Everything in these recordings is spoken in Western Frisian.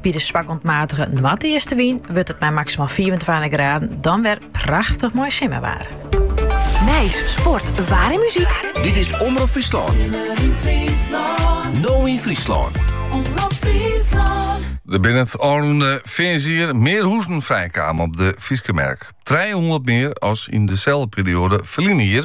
By de swak oant matige noardeastewyn wurdt it mei maksimaal 25 graden dan wer prachtich moai simmerwaar. Nijs, sport, waar en muziek. Dit is Omrop Fryslân. No yn Fryslân. Omrop Fryslân. Der binne it ôfrûne fearnsjier mear huzen frijkommen op de Fryske merk. 300 mear as yn deselde perioade ferline jier.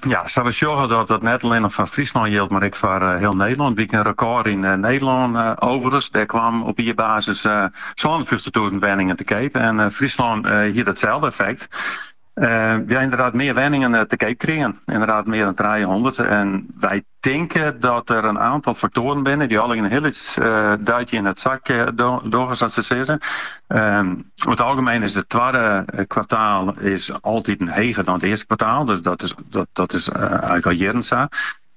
ja, we sjogge dat dat net allinnich foar Fryslân jildt, mar ek foar eh, hiel Nederlân. It wie in rekôr yn eh, Nederlân eh, overigens. Dêr kwam op jierbasis eh, 52.000 wenningen te keap. En eh, Fryslân eh, hie datselde effekt. Eh, ja, inderdaad, mear wenningen eh, te keap krigen. Inderdaad, mear dan 300. En wy tinke dat der in aantal faktoaren binne dy allegearre in hiel lyts duitsje yn it sakje dogge sa te sizzen. Oer it algemeen is it twadde kwartaal is altiten heger dan it earste kwartaal, dus dat is dat is eigenlijk al jierren sa.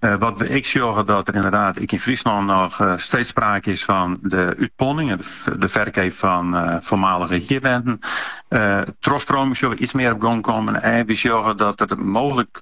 Wat we ek sjogge dat der inderdaad ek yn Fryslân noch steeds sprake is fan de útponning en de ferkeap fan foarmalige hierwenten. Trochstroming sjogge we iets mear op gong kommen en we sjogge dat der mooglik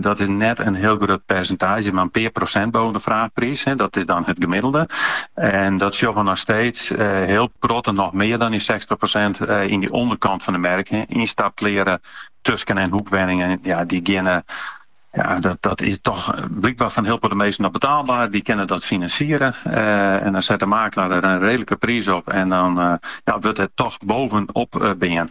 Dat is net in hiel grut persintaazje, mar in pear prosint boven de fraachpriis. Dat is dan it gemiddelde. En dat sjoch we noch steeds hiel protte, noch mear dan dy sechstich prosint yn dy ûnderkant fan de merk. Ynstapkleare tusken en hoekwenningen, ja, dy geane, ja, dat is toch blykber foar hiel protte minsken noch betaalber. Dy kinne dat finansiere. En dan set de makelaar der in redelijke priis op en dan wurdt der toch bovenop bean.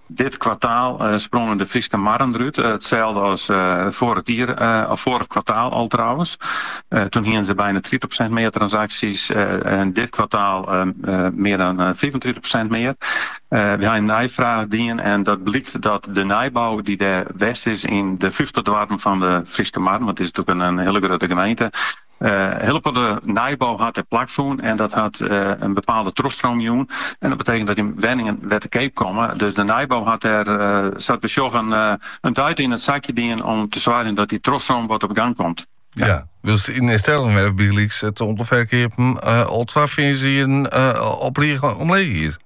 Dit kwartaal sprongen de Fryske marren derút, itselde as foaret jier, of foaret kwartaal al trouwens. Toen hiene se bijna tritich prosint mear transacties en dit kwartaal mear dan fiifentritich prosint mear. We ha neifraach dien en dat blykt dat de nijbou dy't dêr west is yn de fyftich doarpen fan de Fryske marren, want it is natuurlijk in hiele grutte gemeente, Hiel protte nijbou hat dêr plak fûn en dat hat in bepaalde trochstroom jûn. En dat betekent dat der wenningen wer te keap komme. Dus de nijbou hat dêr, sa't we sjoggen, in duit yn it sakje dien om te soargjen dat dy trochstroom wat op gang komt. Ja, wylst yn Stellingwerf bygelyks it oantal ferkeapen al twa fearnsjierren op rige omleech giet.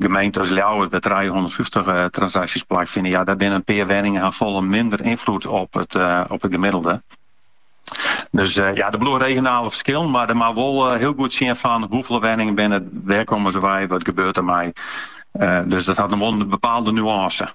Gemeenten as Ljouwert, wêr't trijehûndertfyftich transakties plakfine, ja, dêr binne in pear wenningen ha folle minder ynfloed op it gemiddelde. Dus ja, der bliuwe regionale ferskillen, mar men moat wol hiel goed sjen fan hoefolle wenningen binne it, wêr komme se wei, wat gebeurt dermei. Dus dat hat noch wol in bepaalde nuance.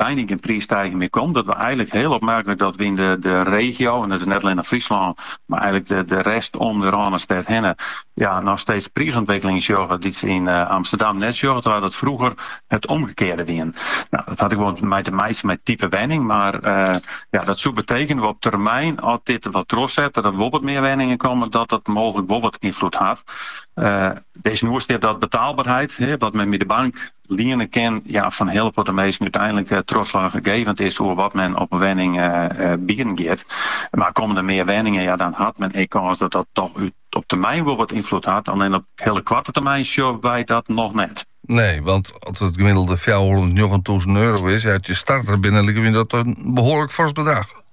byna gjin priissteiging mear komt, dat we eigenlik hiel opmerklik dat we yn de regio, en dat is net allinnich Fryslân, mar eigenlik de rest om de Rânestêd hinne, ja, noch steeds priisûntwikkelingen sjogge dy't se yn Amsterdam net sjogge, terwijl dat frûger it omgekearde wie. Nou, dat hat ek wol mei te meitsjen mei type wenning, mar ja, dat soe betekenen op termyn, as dit der wat trochset, dat der wol wat mear wenningen komme, dat dat mooglik wol wat ynfloed hat. Dêrtsjinoer stiet dat betaalberheid, wat men by de bank, liene kin, ja, foar hiel protte minsken úteinlik trochslaachgevend is oer wat men op in wenning bieden giet. Mar komme der mear wenningen, ja dan hat men ek kâns dat dat toch op termyn wol wat ynfloed hat. Allinne op hiele koarte termyn sjogge wy dat noch net. Nee, want as it gemiddelde fjouwerhûndertnjoggen tûzen euro is, ja, at je starter binnen, liket my dat in behoarlik fors bedrach.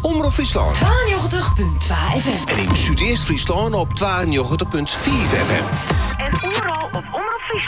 Omrop Fryslân. 92.2 FM. En yn Súdeast-Fryslân op 92.5 FM. En oeral op Omrop Fryslân.